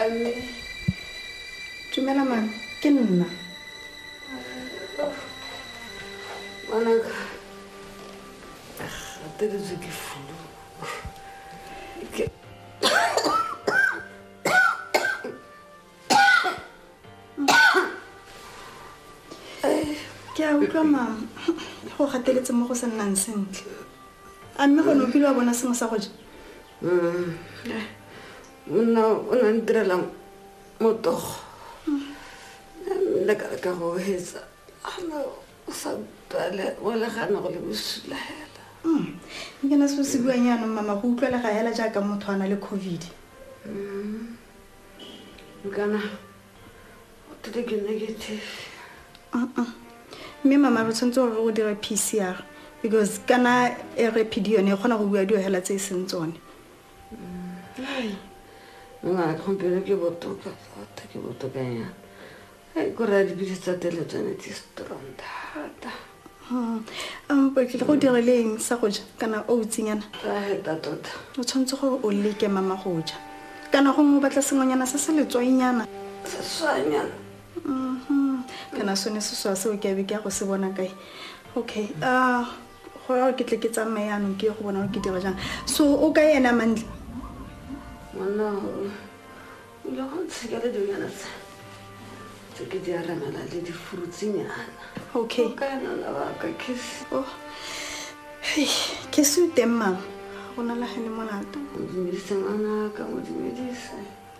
Ame. Tumela man, ke nna. Ngwanaka. Gateletswe ke fulu. Ke ke a utlwa mama go gateletse mo go sa nnang sentle a mme gone o kile wa bona sengwe sa go ja monna o na ntirela motogo lekala ka go hetsa ana o sa bale o legana go le bosula hela hmm. nke na seo se buang yaanong mama go utlwela ga hela jaaka motho a na le covid hmm. nkana What did you negative? Uh-uh. Mme mama re tshwanetse gore o dire PCR because kana e re PD yone e kgona go bua dio hela tse e seng tsone. Ai. Nna go bere ke botoka thata ke botoka yana. Ai go ra dipitse tsa tele tsone tse strong thata. Hmm. Um, o tlile go dira le eng sa go ja kana o utsinyana tota tota o tshwanetse gore o leke mama go ja kana gongwe o batla sengwenyana se se letswainyana seswanyana mhm. kana sone seswa seo ke abe ke ya go se bona kae okay ah, go ya ke tle ke tsamaye anong ke ye go bona gore ke dira jang so o ka ena mantle monna Ile go ntsheka le dinana tsa tse ke di aramela le difurutsinyana okay ka nana ba ka kisi oh hey ke se teng mang o na la gane molato modumedise ngwana ka modumedise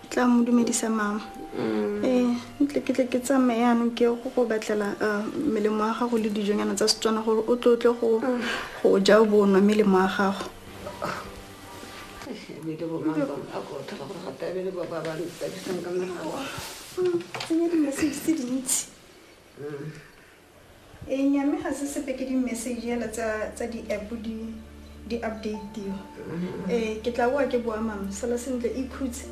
tla mo dumedisa mama mm. eh ntle ke tle ke tsamaye yanong ke go go batlela eh, melemo ya gago le dijonyana tsa setswana gore o tlo tle go mm. go ja o bo nwa melemo ya gago e nyame ga se sepe ke di-message yela tsa di-app di update mm-hmm. eh ke tla boa ke boa mama sala sentle ikhutse